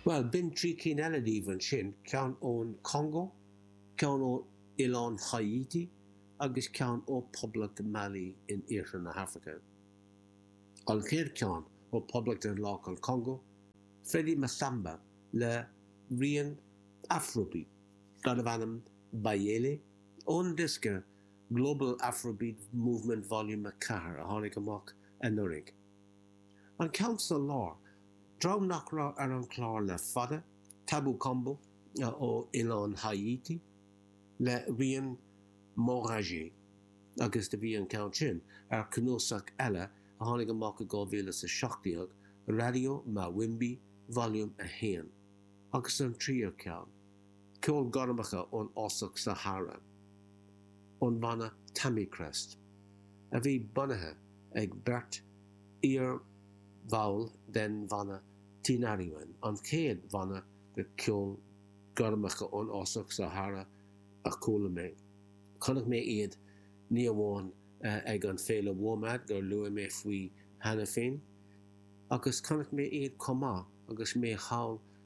Bhuel, b'in trí cinn eile daoibh ansin, ceann ón Chongó, ceann ó Oileán Háítí agus ceann ó Poblacht Mali in Iarthar na hAfraice. An chéad cheann, ó Poblacht Dhaonlathach an Chongó, Freddy Massamba le rian Afrobeat darbh ainm Bayéle ón diosca Global Afrobeat Movement Volume 4 a tháinig amach anuraidh. An ceann sa lár, dream nach raibh ar an chlár le fada, Tabou Combo ó oileán Haiti le rian Moraji agus do bhí an ceann sin ar chnuasach eile a tháinig amach i 2017, Radio Mawimbi Volume 1 agus an tríú ceann. Ceol gormacha ón fhásach Sahara, ón bhanna Tamikrest, a bhí bunaithe ag beirt iarbhall den bhanna Tinariwen, an chéad bhanna de cheol gormacha ón fhásach Sahara a chuala mé. Chonaic mé iad ní amháin ag an Féile WOMAD gur luaigh mé faoi cheana féin, agus chonaic mé iad chomh maith agus mé thall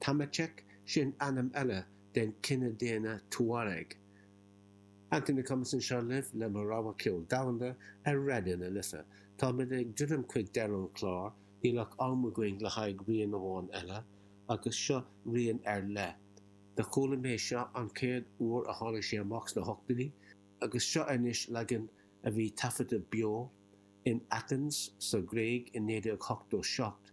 Tamacheq, sin ainm eile den chine daonna Tuareg. Anthony McComas anseo libh le mo rogha ceol domhanda ar Raidió na Life. Táimid ag druidim chuig deireadh an chláir, níl ach am againn le haghaidh rian amháin eile, agus seo rian ar leith. Do chuala mé seo an chéad uair a tháinig sé amach sna hochtóidí, agus seo anois leagan a bhí taifeadta beo in Athens sa Ghréig i 1987.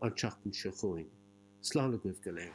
an tseachtain seo chugainn. Slán agaibh go léir.